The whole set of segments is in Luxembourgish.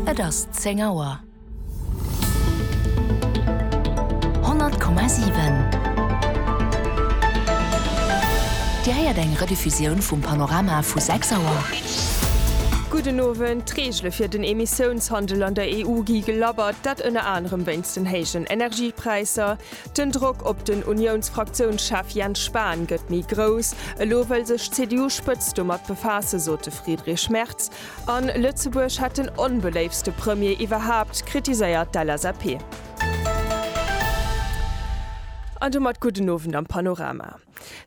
Et ass 10 Auer. 100,7 Dir héiert eng Rediffusioun vum Panorama vu 6 Auer. Gudden Owend. D'Reegele fir den Emissiounshandel an der EU gi gelabbert, dat ënner anerem wéinst den héijen Energiepräisser. Den Drock op den Uniounsfraktiounschef Jens Spahn gëtt méi grouss. Elo wëll sech d'CDU-Spëtzt domat befaassen, sot de Friedrich Merz. An Lëtzebuerg hätt den onbeléiftste Premier iwwerhaapt, kritiséiert d'LSAP. An domat gudden Owend am Panorama.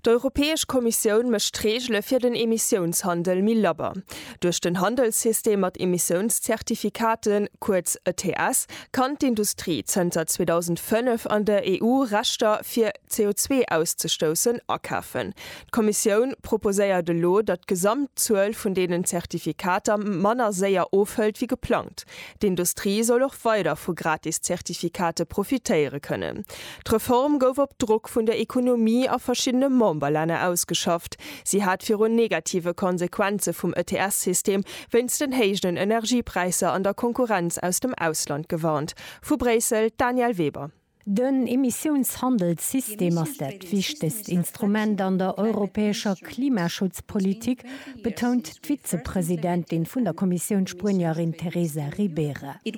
D'Europäesch Kommissioun mécht d'Reegele fir den Emissiounshandel méi labber. Duerch den Handelssystem mat Emissiounszertifikaten, kuerz ETS, kann d'Industrie zënter 2005 an der EU Rechter fir CO2 auszestoussen akafen. D'Kommissioun proposéiert elo, datt d'Gesamtzuel vun deenen Zertifikater manner séier ofhëlt wéi geplangt. D'Industrie soll och weider vu gratis Zertifikate profitéiere kënnen. D'Reform gouf op Drock vun der Ekonomie a verschiddene Memberlänner ausgeschafft. Si hat virun negative Konsequenze vum ETS-System wéinst den héijen Energiepräisser an der Konkurrenz aus dem Ausland gewarnt. Vu Bréissel, d'Danièle Weber. Den Emissiounshandelssystem ass dat wichtegst Instrument an der europäescher Klimaschutzpolitik, betount d'Vizepresidentin vun der Kommissioun, d'Spuenierin Teresa Ribera. E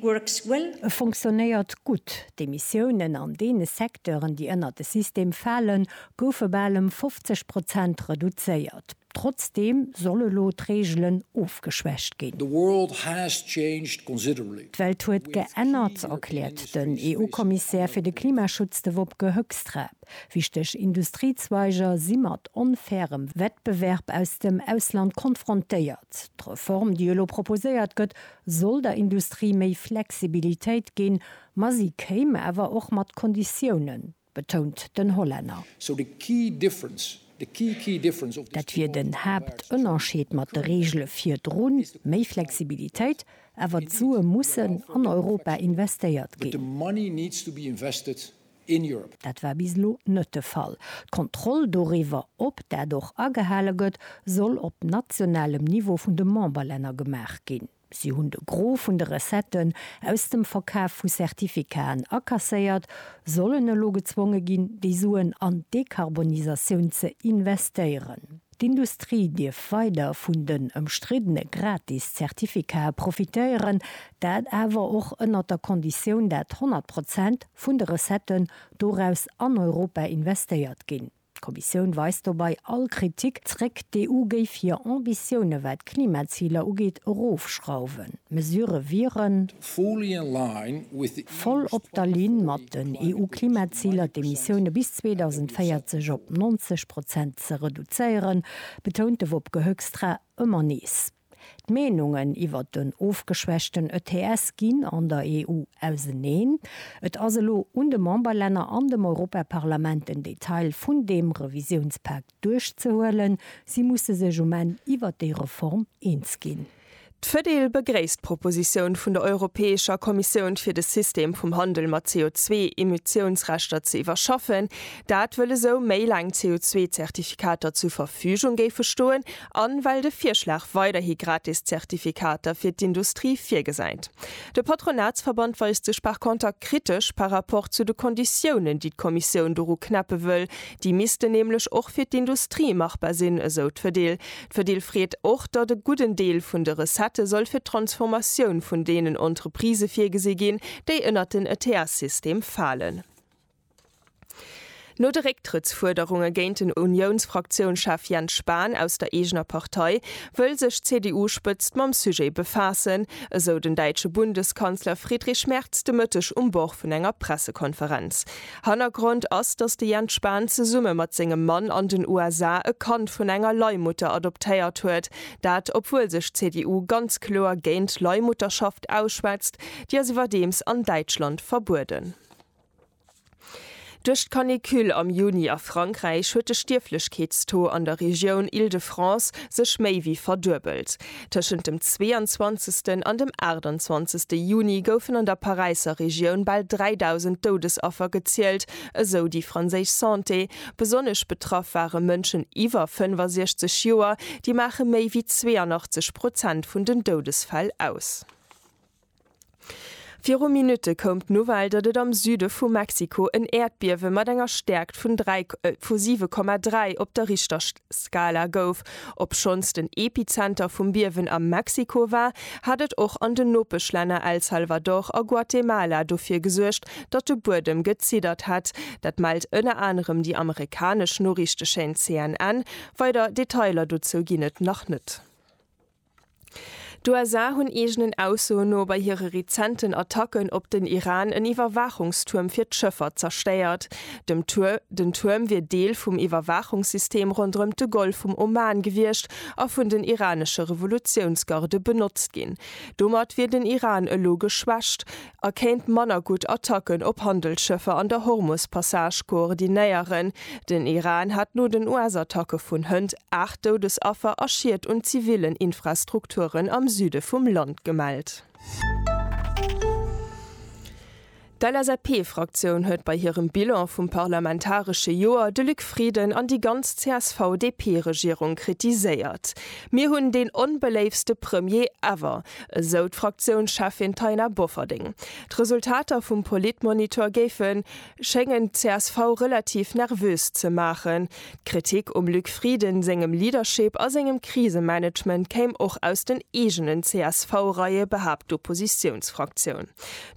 funktionéiert gutt, D'Emissiounen an deene Secteuren, déi ënnert de System falen, goufe bal ëm 50 Prozent reduzéiert. Trotzdeem soll elo d'Reegelen ofgeschwächt ginn. D'Welt huet geännert, erkläert den EU-Kommissär fir de Klimaschutz, de Wopke Hoekstra. Wichteg Industriezweiger si mat onfairem Wettbewerb aus dem Ausland konfrontéiert. D'Reform, déi elo proposéiert gëtt, soll der Industrie méi Flexibilitéit ginn, ma si kéim awer och mat Konditiounen, betount den Hollänner. Dat wier den Haaptënnerscheed mat de Reegele virdrun, méi Flexibilitéit, awer d'Sue mussen an Europa investéiert ginn. in Europe. Dat war bis elo net de Fall. D'Kontroll doriwwer, ob dat och agehale gëtt, soll op nationalem Niveau vun de Memberlänner gemaach ginn. Si hunn de Gros vun de Recetten aus dem Verkaf vu Certificaten akasséiert, sollen elo gezwonge ginn, déi Suen an d'Dekarbonisatioun ze investéieren. D'Industrie dierf weider vun den ëmstriddene gratis Zertifikae profitéieren, dat awer och ënnert der Konditioun, dat 100 Prozent vun de Recetten doraus an Europa investéiert ginn. D'Kommissioun weist dobei all Kritik zréck, d'EU géif hir Ambitioune wat d'Klimaziler ugeet erofschrauwen. D'Mesurë wieren. Voll op der Linn mat den EU-Klimaziler, d'Emissioune bis 2040 op 90 Prozent Impakt ze reduzéieren, betount de Wopke Hoekstra ëmmer nees. D'Meenungen iwwert den ofgeschwächten ETS ginn an der EU auseneen. Et ass elo un de Memberlänner an dem Europaparlament den Detail vun deem Revisiounspak duerchzehuelen. Si musse sech um Enn iwwert déi Reform eens ginn. D'Fedil begréisst d'Propositioun vun der Europäescher Kommissioun fir de System vum Handel mat CO2-Emissiounsrechter ze iwwerschaffen. Dat wëll esou méi laang CO2-Zertifikater zur Verfügung géife stoen an well de Virschlag weiderhi gratis Zertifikater fir d'Industrie virgesäit. De Patronatsverband weist sech par conter kritesch par rapport zu de Konditiounen, déi d'Kommissioun doru knäppe wëll. Déi missten nämlech och fir d'Industrie machbar sinn, esou d'Fedil. D'Fedil freet och, datt e gudden Deel vun de Recettë soll fir d'Transformatioun vun deenen Entreprisë virgesi ginn, déi ënnert den ETS-System falen. No de Récktrëttsfuerderunge géint den Uniounsfraktiounschef Jens Spahn aus der eegener Partei, wëll sech d'CDU-Spëtzt mam Sujet befaassen, esou den däitsche Bundeskanzler Friedrich Merz de Mëtteg um Bord vun enger Pressekonferenz. Hannergrond ass, datt de Jens Spahn zesumme mat sengem Mann an den USA e Kand vun enger Leihmutter adoptéiert huet. Dat obwuel sech d'CDU ganz kloer géint d'Leihmutterschaft ausschwätzt, déi ass iwwerdeems an Däitschland verbueden. Duerch d'Canicule am Juni a Frankräich huet de Stierflechkeetstaux an der Regioun Île-de-France sech méi wéi verduebelt. Tëschent dem 22. an dem 28. Juni goufen an der Paräisser Regioun bal 3.000 Doudesaffer gezielt, esou déi franséisch Santé. Besonnesch betraff ware Mënschen iwwer 65 Joer, déi maache méi wéi 82 Prozent vun den Doudesfäll aus. Viru Minutte koum d'Nouvelle, datt et am Süde vu Mexiko en Äerdbiewe mat enger Stäerkt vun 7,3 op der Richterskala gouf. Obschonns den Epizenter vum Biewen a Mexiko war, hat et och an den Nopeschlänner El Salvador a Guatemala dofir gesuergt, datt de Buedem geziddert hätt. Dat mellt ënner anerem déi amerikanesch Noriichtechaîne CNN. Weider Detailer dozou ginn et nach net. D'USA hunn eegenen Aussoen no bei hire rezenten Attacken op den Iran en Iwwerwaachungstuerm fir d'Schëffer zerstéiert. Den Tuerm wier Deel vum Iwwerwaachungssystem ronderëm de Golf vum Oman gewiescht a vun den iranesche Revolutiounsgarde benotzt ginn. Domat wier den Iran elo geschwächt. a kéint manner gutt Attacken op Handelsschëffer an der Hormus-Passage koordinéieren. Den Iran hat no den US-Attacke vun hënt 8 Doudesaffer a Schied un zivillen Infrastrukturen am Süde vum Land gemellt. D'LSAP-Fraktioun huet bei hirem Bilan vum parlamentaresche Joer de Luc Frieden an déi ganz CSV-DP-Regierung kritiséiert. Mir hunn deen onbeléiftste Premier ever, esou d'Fraktiounscheffin Taina Bofferding. D'Resultater vum Politmonitor géife schéngen d'CSV relativ nervös ze maachen. D'Kritik um Luc Frieden sengem Leadership a sengem Krisemanagement kéim och aus den eegenen CSV-Reie, behaapt d'Oppositiounsfraktioun.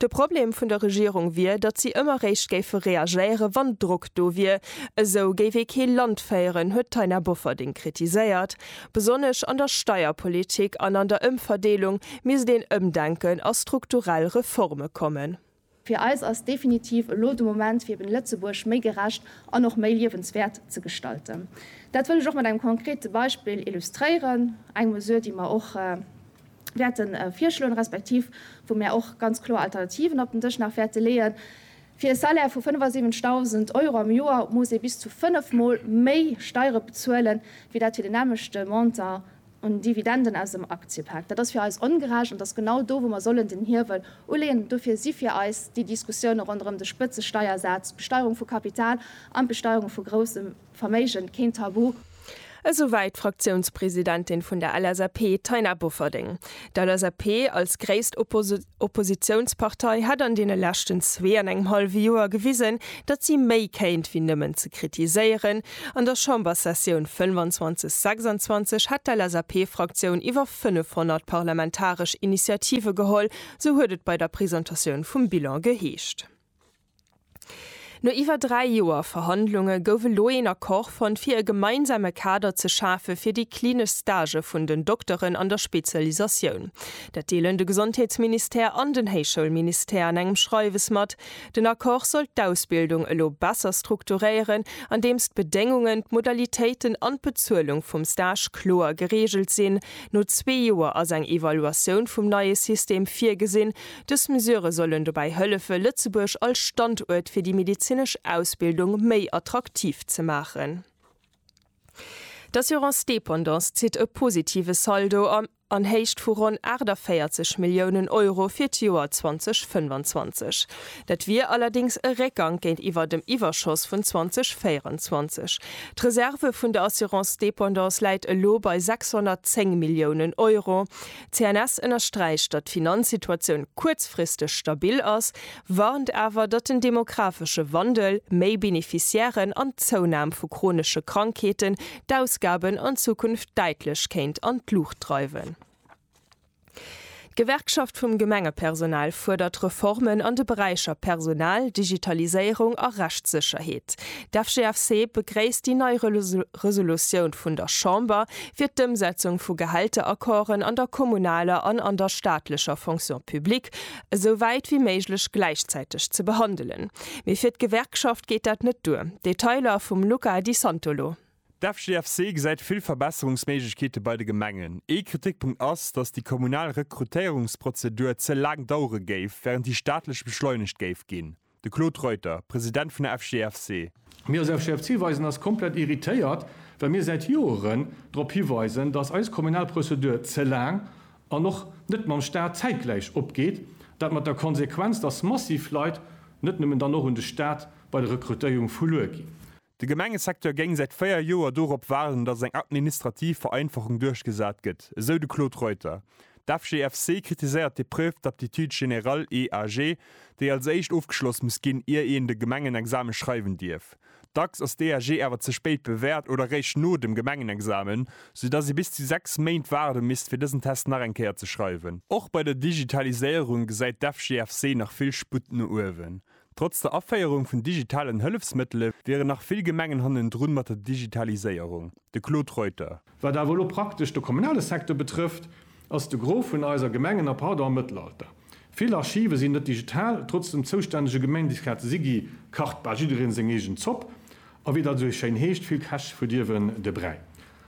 De Problem vun der Regierung wier, datt si ëmmer réischt géife reagéiere wann Drock do wier. Esou géif ee kee Land féieren, huet d'Taina Bofferding kritiséiert. Besonnesch an der Steierpolitik an an der Ëmverdeelung misst een Ëmdenken a strukturell Reforme kommen. Fir eis ass definitiv elo de Moment, fir eben Lëtzebuerg méi gerecht an och méi liewenswäert ze gestalten. Dat wëll ech och mat engem konkrete Beispill illustréieren, eng Mesure, déi mer och wäerte virschloen, respektiv wou mär och ganz kloer Alternativen op den Dësch nach wäerte leeën. Fir e Salaire vu 75.000 Euro am Joer muss ee bis zu fënnef Mol méi Steiere bezuelen, wéi dat fir den nämmlechte Montant un Dividenden aus dem Aktiepak. Dat ass fir eis ongerecht an et ass genau do, wou mer sollen den Hiewel uleeën. Dofir si fir eis déi Diskussioune ronderëm de Spëtzesteiersaz, d'Besteierung vu Kapital an d'Besteierung vu groussem, Verméigen, keen Tabu! Esou wäit d'Fraktiounspresidentin vun der LSAP, Taina Bofferding. D'LSAP als gréisst Oppositiounspartei hätt an deene leschten zwee an engem hallwe Joer gewisen, datt si méi kéint wéi nëmmen ze kritiséieren. An der Chamberssessioun 25, 26 hätt d'LSAP-Fraktioun iwwer 500 parlamentaresch Initiative geholl, sou huet et bei der Presentatioun vum Bilan geheescht. No iwwer dräi Joer Verhandlunge gouf elo een Accord fonnt, fir e gemeinsame Kader ze schafe fir déi klinesch Stagë vun den Dokteren an der Spezialisatioun. Dat deelen de Gesondheetsministère an den Héichschoulministère an engem Schreiwes mat. Den Accord soll d'Ausbildung elo besser strukturéieren, andeems d'Bedéngungen, d'Modalitéiten an d'Bezuelung vum Stage kloer gereegelt sinn. No zwee Joer ass eng Evaluatioun vum neie System virgesinn. Dës Mesure sollen dobäi hëllefe Lëtzebuerg als Standuert fir déi medezinesch Ausbildung méi attraktiv ze maachen. D'Assurance Dépendance zitt e positive Saldo an Héicht vu ronn 48 Milliounen Euro fir d'Joer 2025. Dat wier allerdéngs e Réckgank géintiwwer dem Iwwerschoss vun 2024. D'Reserve vun der Assurance Dépendance läit elo bei 610 Milliounen Euro. D'CNS ënnersträicht, datt d'Finanzsituatioun kuerzfristeg stabil ass, warnt awer, datt den demographesche Wandel, méi Beneficiairen an d'Zounam vu chronesche Krankheeten d'Ausgaben an Zukunft däitlech kéint an d'Luucht dreiwen. D'Gewerkschaft vum Gemengepersonal fuerdert Reformen an de Beräicher Personal, Digitaliséierung a Rechtssécherheet. D'FGFC begréisst déi nei Resolutioun vun der Chamber fir d'Ëmsetzung vu Gehälteraccorden an der kommunaler an an der staatlecher Fonction publique esou wäit wéi méiglech gläichzäiteg ze behandelen. Mee fir d'Gewerkschaft geet dat net duer. Detailer vum Luca Di Santolo. D'FGFC gesäit vill Verbesserungsméiglechkeete bei de Gemengen. Ee Kritikpunkt ass, datt déi kommunal Rekrutéierungsprozedur ze laang dauere géif, wärend déi staatlech beschleunegt géif ginn. De Claude Reuter, President vun der FGFC. Mir als FGFC weisen eis komplett irritéiert, well mir säit Joeren drop hiweisen, datt eis kommunal Prozedur ze laang an och net mam Staat zäitgläich opgeet. Dat mat der Konsequenz, datt massiv Leit net nëmmen dann och un de Staat bei der Rekrutéierung verluer ginn. De Gemengesecteur géing säit 4 Joer dorop waarden, datt eng administrativ Vereinfachung duerchgesat gëtt, esou de Claude Reuter. D'FGFC kritiséiert d'Épreuve d'aptitude générale, EAG, déi als éischt ofgeschloss muss ginn, ier een de Gemengenexame schreiwen dierf. Dacks ass d'EAG awer ze spéit bewäert oder réischt no dem Gemengenexamen, sou datt ee bis zu 6 Méint waarde misst, fir dësen Test nach eng Kéier ze schreiwen. Och bei der Digitaliséierung gesäit d'FGFC nach vill Sputt no uewen. Trotz der Aféierung vun digitalen Hëllefsmëttele wieren nach vill Gemengen hannendrun mat der Digitaliséierung. De Claude Reuter. Wat awer elo praktesch de kommunale Secteur betrëfft, ass de Gros vun eiser Gemengen a pardon am Mëttelalter. Vill Archive sinn net digital, trotz dem zoustännege Gemeindisrat Sigi kacht bal jiddereen seng eegen Zopp a wéi dat esou schéin heescht, vill Käch verdierwen de Bräi.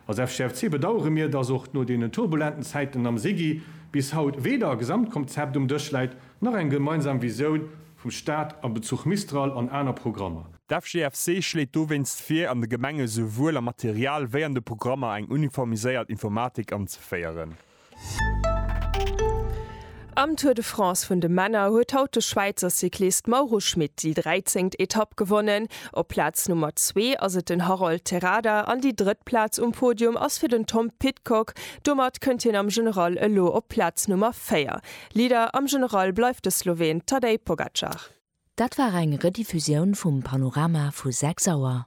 Als FGFC bedauere mir, dass och no deenen turbulenten Zäiten am SIGI bis haut weder e Gesamtkomzept um Dësch läit, nach eng gemeinsam Visioun vum Staat a Bezuch Mistral an aner Programmer. D'FGFC schléit dowéinst vir, an de Gemenge souwuel am Material wéi an de Programmer eng uniformiséiert Informatik anzeféieren. Am Tour de France vun de Männer huet haut de Schwäizer Cyclist Mauro Schmit déi 13. Etapp gewonnen. Op Plaz Nummer zwee ass et den Harold Terrada an déi drëtt Plaz um Podium ass fir den Tom Pidcock. Domat kënnt hien am General elo op Plaz Nummer véier. Leader am General bleift de Sloween Tadej Pogacar. Dat war eng Rediffusioun vum Panorama vu 6 Auer.